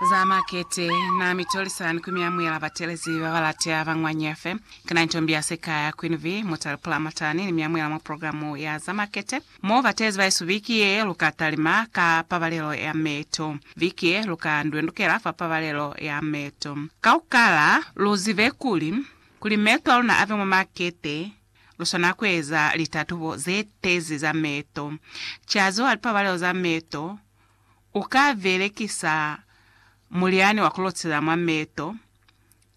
Za makete, Na mi tolisa ni ku mi amuhela batelezi ba ba latea ba mwa Nyefe. Ki na intombi ya sika ya Queen Vee, Mutale Pulamatani, ni mi amuhela mwa programu ya za makete. Mo batelezi ba isu viki ye, lu ka talima ka pabalelo ya meto. Viki ye, lu ka ndwendukela fa pabalelo ya meto. Ka ku kala, lu zibe kuli, kuli meto a luna abe mwa makete, lu swana ku eza litatubo ze tezi za meto. Ki aziwa lipabalelo za meto, u ka belekisa mulyani wa ku lotela mwa meto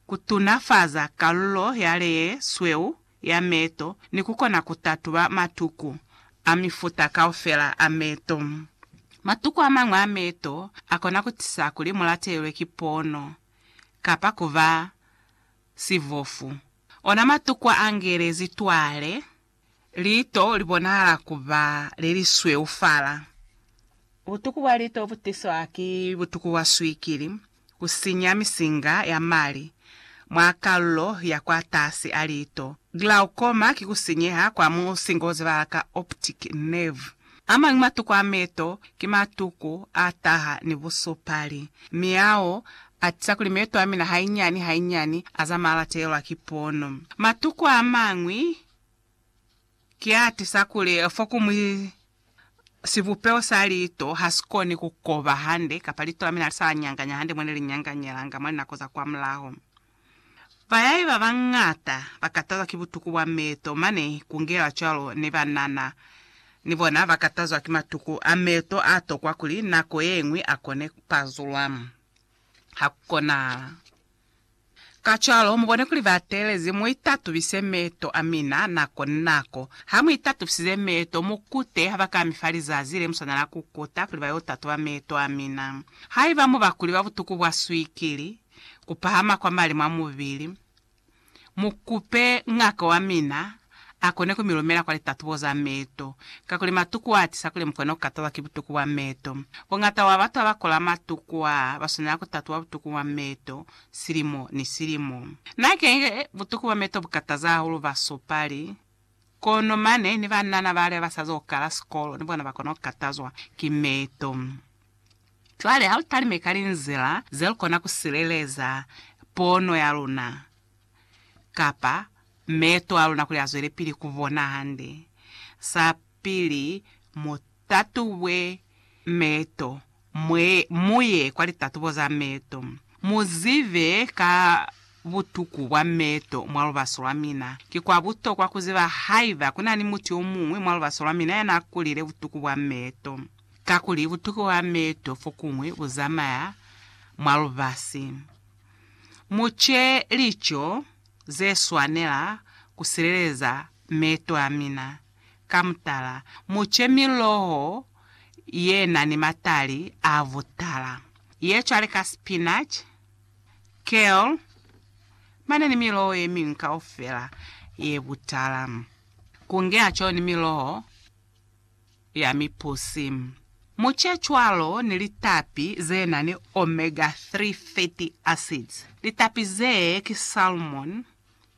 ku tunafaza kalulo ya le ye sweu ya meto ni ku kona ku tatuba matuku a mifuta kaufela a meto. Matuku a mañwi a meto a kona ku tisa kuli mu latelelwe ki pono kapa ku ba sibofu. Ona matuku a ngelezi twale. Liito li bonahala ku ba le li sweufala. Butuku bwa liito bu tiswa ki butuku bwa swikili, ku sinya misinga ya mali mwa kalulo ya kwatasi a liito. Glaucoma ki ku sinyeha kwa musinga o zebahala ka optic nerve. Amañi matuku a meto ki matuku a taha ni busupali, mi ao a tiza kuli meto a mina hainyani hainyani a zamaya a latelelwa ki pono. Matuku amañwi ki a tiza kuli fokumwi sibupeho sa liito ha si koni ku koba hande kapa liito la mina ha li sa la nyanganya hande mo ne li nyanganyelanga mwa linako za kwamulaho. Bayai babañata bakatazwa ki butuku bwa meeto, mane kungela cwalo ni banana. Ni bona bakatazwa ki matuku a meeto aatokwa kuli nako yeñwi akone kupazulwa. Hakukonahala. Kacwalo, mubone kuli bateelezi muitatubise meeto amina nako ni nako. Hamuitatubisize meeto, mukute habakami fa lizazi lemuswanela kukuta kuli bayo tatuba meeto amina. Haiba muba kuli babutuku bwa swikili, ku pahama kwa mali mwa mubili, mu kupe ngaka wa mina a kone ku mi lumela kwa litatubo za meto, kakuli matuku a tisa kuli mu kone ku katalwa ki butuku bwa meto. Bongata bwa batu abakola matuku a ba swanela ku tatuba butuku bwa meto silimo ni silimo. Na keñi butuku bwa meto bu kataza hahulu basupali. Kono mane ni banana bale ba sa zo kala sikolo ni bona ba kona ku katazwa ki meeto. Cwale ha lu talime ka linzila ze lu kona ku sileleza pono ya luna kapa meeto a luna kuli a zwelepili ku bona hande, sa pili mo Tatubwe meeto, mwe, muye kwa litatubo za meeto, mu zibe ka butuku bwa meeto mwa lubaso lwa mina. Ki kwa butokwa ku ziba haiba ku na ni mutu yo muñwi mwa lubaso lwa mina ya n'a kulile butuku bwa meeto. Kakuli butuku bwa meeto fokuñwi bu zamaya mwa lubasi. Mu ce lico ze swanela ku sileleza meeto a mina. Ka mutala, mu ce miloho ye na ni matali a butala, ye cwale ka spinach, kale, mane ni miloho ye miñwi kaufela ye butala, ku ngeaco ni miloho ya mipusi. Mu ce cwalo ni litapi ze na ni omega-3 fatty acids, litapi zee ki salmon,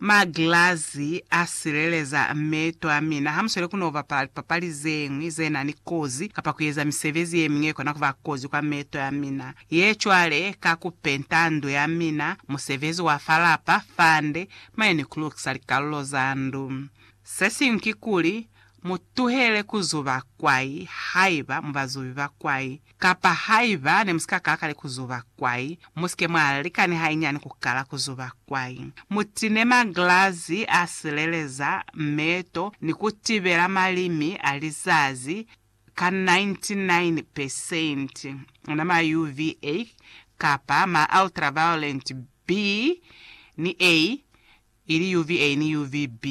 Maglazi a sileleza meeto a mina hamusweli ku n'o bapala lipapali ze ñwi ze na ni kozi kapa ku eza misebezi ye miñwi ye kona ku ba kozi kwa meeto a mina. Ye cwale ka ku penta ndu ya mina, musebezi wa fa lapa, fande, mane ni ku lukisa likalulo za ndu. Se siñwi kikuli, mu tuhele ku zuba kwai haiba mu bazubi ba kwai. Kapa haiba nemusika ka kale kuzuba kwai, musike mwa lika ni hainyani kukala kuzuba kwai. Mutine maglazi a sileleza meeto ni kutibela malimi a lizazi ka 99 pesenti ona ma UVA kapa ma ultraviolet B ni A, ili UVA ni UVB.